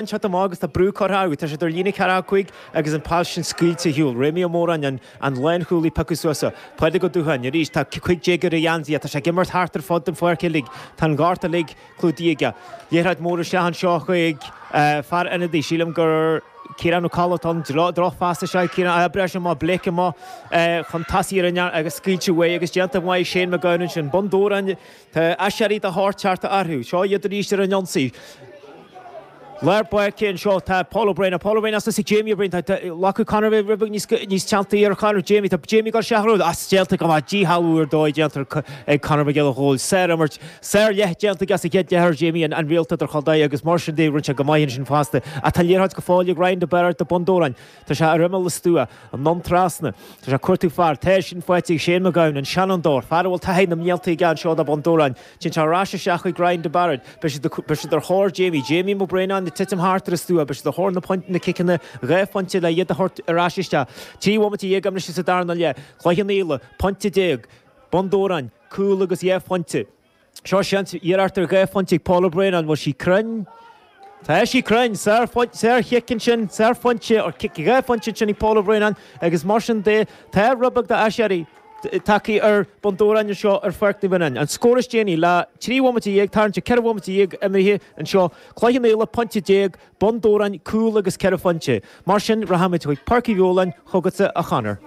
Anseo tá Má agus tá brú curtha acu, tá siad ar líne 4 5 agus an pheil sin scaoilte ar shiúl. Réamaí Ó Móráin, an, an lánchúlaí piocadh suas so. Pádraig Ó Dúcháin, arís, tá 15 gcéad ar a gheansaí air, tá sé ag imirt thart ar fud an pháirc uilig, tá an gort uilig clúdaithe aige. Liathróid mór isteach anseo chuig, eh, fear ionadaí, sílim gur Ciarán Ó Colla atá ann, droch, drochphas is ea ag Ciarán, ah, breis amuigh, Blake amuigh, eh, chun tosaigh ar an ngeansaí agus scaoilte uaidh agus déanta go maith ag Shane McGowan ansin. Bun Dobhráin. Tá aiséirí de shórt tagtha orthu. Seo iad arís ar an ionsaí. Lár páirce anseo. Tá Paul Ó Braonáin, Paul Ó Braonáin suas ag Jamie Ó Braonáin. Tá glacadh Conor rud beag níos teannta ar Chonor. Jamie, tá Jamie ag cur isteach orthu. Is déanta go maith. Díshealbhú ar dóigh déanta ag Conor Mac Giolla Chóill. Sárimirt, sárleath déanta aige sa chéad leath ar Jamie, an réalta idirchontae agus mar sin de rinne sé go maith ansin fosta. Ach tá liathróid go fóill ag Ryan de Bairéad do Bhun Dobhráin. Tá sé ar imeall an stua, anonn trasna. Tá sé ag cuartú fear. Tá sin faighte aige, Shane Mag Gabhann, an seanfhondóir, fear a bhfuil taithí na mblianta aige anseo do Bhun Dobhráin. Téann sé ar ais isteach chuig Ryan de Bairéad. Beidh siad ar thóir Jamie. Jamie Ó Braonáin ag titim thart ar an stua. Beidh siad ar thóir na ciceanna dhá phointe le iad a thabhairt ar ais isteach. Trí bhomaite dhéag imithe sa darna leath. Cloich Cheann Fhaola, pointe déag. Bun Dobhráin, cúl agus dhá phointe. Seo seans, iarracht ar dhá phointe ag Paul Ó Braonáin, an bhfuil sí cruinn? Tá sí cruinn! Sárchic ansin, sárphointe, cic dhá phointe ansin ag Paul Ó Braonáin agus mar sin de tá rud beag d'aiséirí tagtha ar Bun Dobhráin anseo ar Pháirc Naomh Fionán. An scór is déanaí le trí bhomaite dhéag tarraingt ar cheithre bhomaite dhéag imithe anseo, Cloich Cheann Fhaola pointe déag, Bun Dobhráin, cúl agus ceithre phointe. Mar sin, rachaimid chuig Páirc Uí Nualláin chugatsa, a Chonor.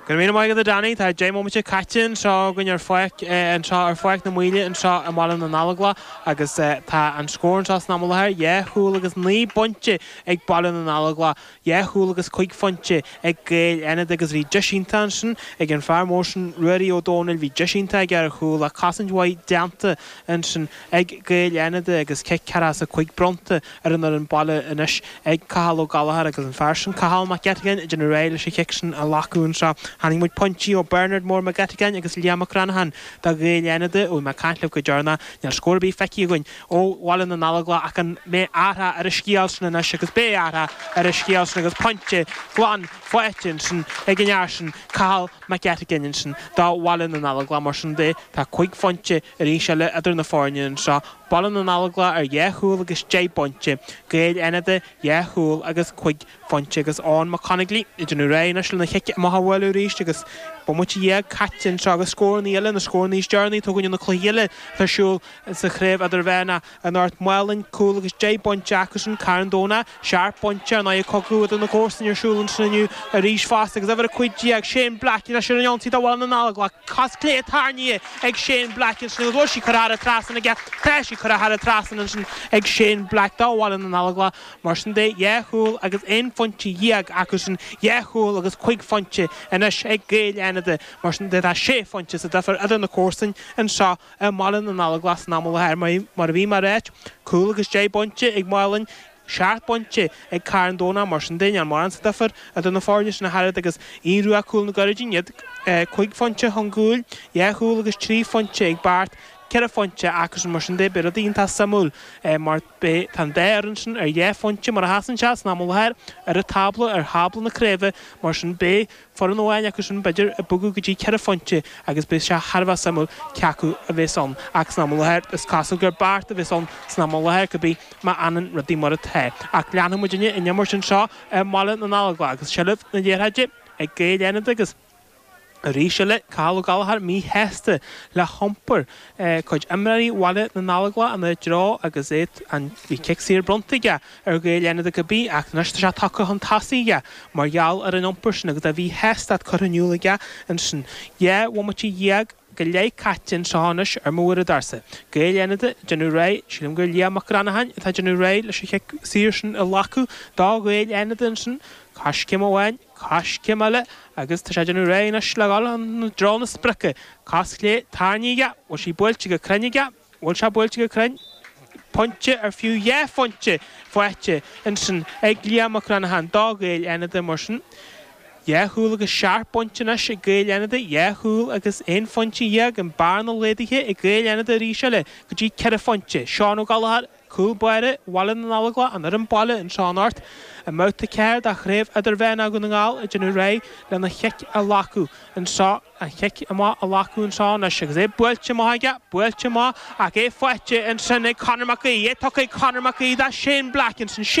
Go raibh míle maith agat, a Danny. Tá deich mbomaite caite anseo againn ar Pháirc anseo ar Pháirc na Maoile anseo i mBaile na nGallóglach agus tá an scór anseo san am i láthair dhá chúl agus naoi bpointe ag Baile na nGallóglach. dhá chúl agus cúig phointe ag Gaeil Fhánada agus bhí deis iontach ansin ag an fear mór sin Ruairí Ó Dómhnaill bhí deis iontach aige ar chúl ach cosaint mhaith déanta ansin ag Gaeil Fhánada agus cic ceathracha is a cúig bronnta ar an fhoireann baile anois ag Cathal Ó Gallchóir agus an fear sin Cathal Mac Eiteagáin ag déanamh réidh leis an chic sin a ghlacadh anseo chonaic muid pointí ó Bernard Mór Mac Eiteagáin agus Liam Mac Reannacháin do Ghaeil Fhánada ó bhí mé ag caint libh go deireanach níl scór ar bith feicthe againn ó Bhaile na nGallóglach ach an mbeidh athrach ar an scéal sin anois agus beidh athrach ar an scéal sin agus pointe glan faighte ansin ag an fhear sin, Cathal Mac Eiteagáin ansin do Bhaile na nGallóglach. Mar sin de, tá cúig phointe arís eile idir na foirne anseo, Baile na nGallóglach ar dhá chúl agus deich bpointe, Gaeil Fhánada dhá chúl agus cúig bPointe agus Eoin Mac Conaglaigh, ag Déanamh Réidh Anois lena Chic Amach a Bhualadh Arís agus Bomaite Dhéag Caite Anseo agus Scórannaí Eile, Na Scórannaí Is Deireanaí Atá Againn ó na Cluichí Eile atá ar Siúl sa Chraobh Idirmheánach Inniu, Málainn, Cúl agus Deich bPointe Acusan, Carn Domhnach, Seacht bPointe, An Aghaidh Cogadh idir na Comharsanaigh ar Siúl ansin inniu arís fosta agus Uimhir 15, Shane Black Anois ar an ionsaí do Bhaile na nGallóglach, Cos Clé Tarraingthe ag Shane Black ansin agus Bhfuil Sí Curtha Thar an Trasnán aige Tá sí curtha thar an trasnán ansin ag Shane Black do Bhaile na nGallóglach. Mar sin de, dhá chúl agus aon phointe dhéag acusan, dhá chúl agus cúig phointe anois ag Gaeil Fhánada. Mar sin de, tá sé phointe sa difear idir na comharsain anseo i mBaile na nGallóglach san am i láthair. Mar a bhí mé a ráit, cúl agus deich bpointe ag Málainn, seacht bpointe ag Carn Domhnach. Mar sin de, níl mórán sa difear idir na foirne sin ach oiread agus Aodh Rua Cúil na gCuirridín, iad cúig phointe chun gcúil, dhá chúl agus trí phointe ag Beart, ceithre phointe acusan. Mar sin de, beidh rudaí iontach suimiúil mar. Beidh, tá an dá fhoireann sin ar dhá phointe mar a sheasann sé san am i láthair ar an tábla, ar thábla na craoibhe, mar sin beidh foireann amháin acu sin, b'fhéidir, ag bogadh go dtí ceithre phointe agus beidh sé thar a bheith suimiúil cé acu a bhéas ann ach san am i láthair is cosúil gur Beart a bhéas ann san am i láthair cá bith má fhanann rudaí mar atá ach leanfaidh muidinne an imirt anseo i mBaile na nGallóglach agus seilbh na liathróide ag Gaeil Fhánada agus Arís eile, Cathal Ó Gallachóir, míshásta le hiompar cuid imreoirí Bhaile na nGallóglach ina dtreo agus é an cic saor bronnta aige ar Ghaeil Fhánada cá bith ach anois tá sé tugtha chun tosaigh aige mar gheall ar an iompar sin agus a mhíshástacht curtha in iúl aige ansin, dhá bhomaite dhéag go leith caite anseo anois ar mo uaireadóirsa, Gaeil Fhánada ag déanamh réidh, sílim gur Liam Mac Reannacháin atá ag déanamh réidh leis an chic saor sin a ghlacadh do Ghaeil Fhánada ansin, coiscéim amháin, coiscéim eile agus tá sé ag déanamh réidh anois le dhul i dtreo na sprice, cos chlé, tarraingthe aige, bhfuil sí buailte go cruinn aige? bhfuil sé buailte go cruinn, pointe ar fiú dhá phointe faighte ansin ag Liam Mac Reannacháin do Ghaeil Fhánada, mar sin. Dhá chúl agus seacht bpointe anois ag Gaeil Fhánada, dhá chúl agus aon phointe dhéag, an bhearna laghdaithe ag Gaeil Fhánada arís eile go dtí ceithre phointe. Seán Ó Gallachóir. Cúl Báire Bhaile na nGallóglach an fhoireann Baile anseo anocht i mbabhta 4 de Chraobh Idirmheánach Dhún na nGall ag déanamh réidh lena chic a ghlacadh anseo an chic amach a ghlacadh anseo anois agus é buailte amach aige buailte amach ach é faighte ansin ag Conor Mac Aoidh é tugtha ag Conor Mac Aoidh do Shane Black ansin Shane